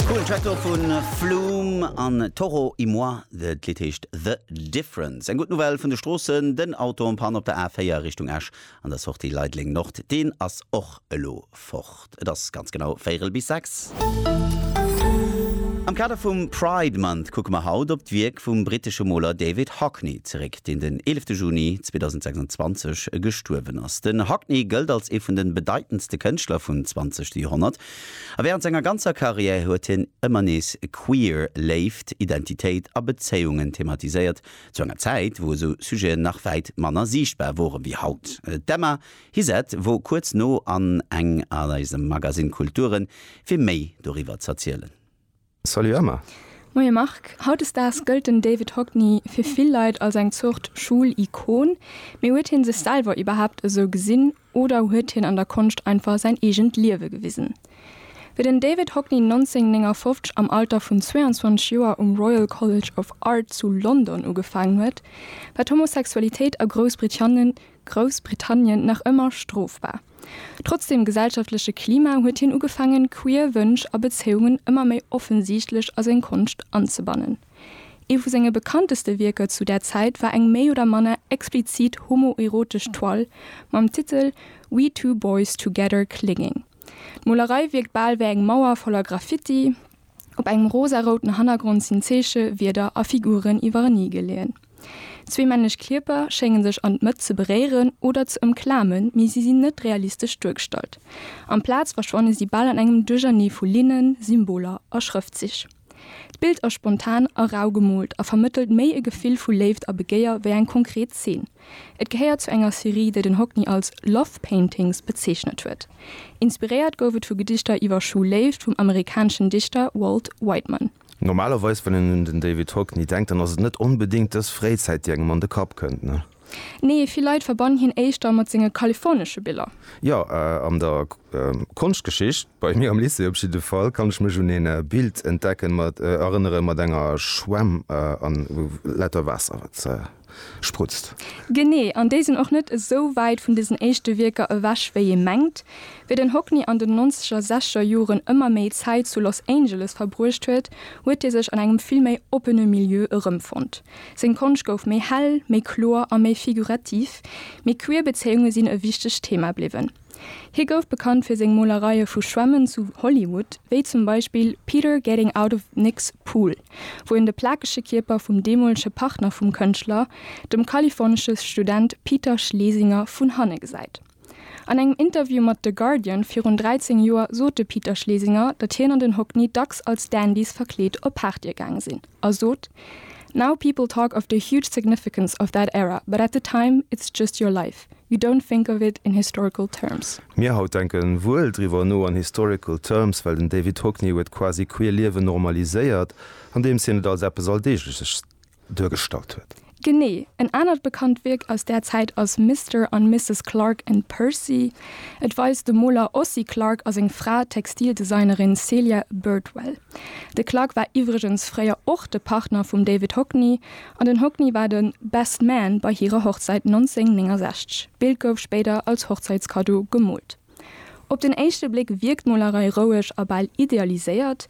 Coolen Track do vun Flume an Toro y Moi. D'Lidd heescht The Difference. Eng gutt Nouvelle vun de Stroossen, den Auto en panne op der A4 Richtung Esch an der Sortie Leideleng Nord, deen ass och elo fort. Et ass ganz genau véierel bis sechs. Am Kader vum Pride Month kucke mer haut op d'Wierk vum brittesche Moler David Hockney zeréck, deen den 11 Juni 2026 gestuerwen ass. Den Hockney gëllt als ee vun de bedeitendste Kënschtler vun 20 Joerhonnert. A während senger ganzer Karriär huet hien ëmmer nees queer Léift, Identitéit a Bezéiungen thematiséiert, zu enger Zäit, wou esou Sujeten nach wäit manner siichtbar woren wéi haut. D'Emma Hizet wor kuerz no an eng an eisem Magasinn Kulturen, fir méi doriwwer z'erzielen. Salut Emma! Moie Marc! Hautdesdaags gëllt den David Hockney fir vill Leit als eng Zort Schoul-Ikon. Mee huet hien sech selwer iwwerhaapt esou gesinn oder huet hien an der Konscht einfach säin eegent Liewe gewisen? Wéi den David Hockney 1959 am Alter vun 22 Joer um Royal College of Art zu London ugefaangen huet, war d'Homosexualitéit a Groussbritanne Groussbritannien nach ëmmer strofbar. Trotz dem gesellschaftleche Klima huet hien ugefaangen, queer Wënsch a Bezéiungen ëmmer méi offensiichtlech a seng Konscht anzebannen. Ee vu senge bekannteste Wierker zu där Zäit war eng méi oder manner explizit homoerotesch Toile mam Titel We Two Boys Together Clinging. D'Molerei wierkt bal wéi eng Mauer voller Graffiti. Op engem rosarouten Hannergrond sinn Zeeche, Wierder a Figuren iwwerenee geleeën. Zwee männlech Kierper schénge sech an d'Mëtt ze beréieren oder ze ëmklamen, mee si sinn net realistesch duergestallt. Amplaz verschwanne si bal an engem Duerchernee vu Linnen, Symboler a Schrëftzich. D'Bild ass spontan a rau gemoolt a vermëttelt méi e Gefill vu Léift a Begéier wéi eng konkret Zeen. Et gehéiert zu enger Serie, déi den Hockney als Love Paintings bezeechnet huet. Inspiréiert gouf et vu Gedichter iwwer Schulléift vum amerikaneschen Dichter Walt Whiteman. Normalerweis, wann een un den David Hockney denkt, dann ass et net onbedéngt dës Fréizäit, déi engem an de Kapp kënnt, ne? Nee, vill Leit verbannen hien éischter mat senge kalifornesche Biller. Jo, an der Konschtgeschicht, bei mir am Lycée op jidde Fall, kann ech mech un een Bild entdecken, mat erënneren, mat enger Schwämm an lauter Waasser, wat. sprutzt. Genee, an déi sinn och net esou wäit vun desen éischte Wierker ewech wéi ee mengt. Wéi den Hockney an den nonzeger, secher Joren ëmmer méi Zäit zu Los Angeles verbruecht huet, huet hie sech an engem vill méi oppene Milieu erëmfonnt. Seng Konscht gouf méi hell, méi kloer a méi figurativ, mee queer Bezéiunge sinn e wichtegt Thema bliwwen. Hie gouf bekannt fir seng Molereie vu Schwämmen zu Hollywood, wéi zum Beispill Peter Getting Out of Nick's Pool, wou en de plakege Kierper vum deemolege Partner vum Kënschtler, dem kalifornesche Student Peter Schlesinger, vun hanne gesäit. An engem Interview mat The Guardian virun 13 Joer sot de Peter Schlesinger, datt hien an den Hockney dacks als Dandys verkleet op Partye gaange sinn, a sot, Now people talk of the huge significance of that era, but at the time, it's just your life. Fact, you don't think of it in historical terms. Mir haut denken wuel driwwer no an historical terms, well den David Hockney huet quasi queer Liewen normaliséiert, andeems hien et als eppes Alldeegleches duergestallt huet. Genee. En anert bekannt Wierk aus där Zäit ass Mister an Misses Clark and Percy. Et weist de Moler Ossie Clark a seng Fra, d'Textildesignerin Celia Birdwell. De Clarke war iwwregens fréier och de Partner vum David Hockney an den Hockney war de Best Man bei hirer Hochzäit 1969. D'Bild gouf spéider als Hochzäitskaddo gemoolt. Op den éischte Bléck wierkt d'Molerei roueg a bal idealiséiert.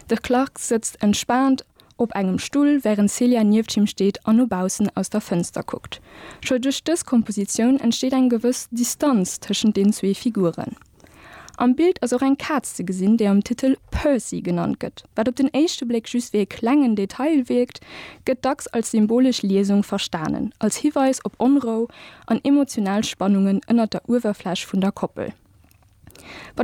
De Clarke sëtzt entspaant op engem Stull, wärend d'Celia nieft him steet an no baussen aus der Fënster kuckt. Scho duerch dës Kompositioun entsteet eng gewëss Distanz tëschent den zwee Figuren. Am Bild ass och eng Kaz ze gesinn, déi am Titel Percy genannt gëtt. Wat op den éischte Bléck just wéi e klengen Detail wierkt, gëtt dacks als symbolesch Liesung verstanen, als Hiweis op Onrou an emotional Spannungen ënnert der Uewerfläch vun der Koppel.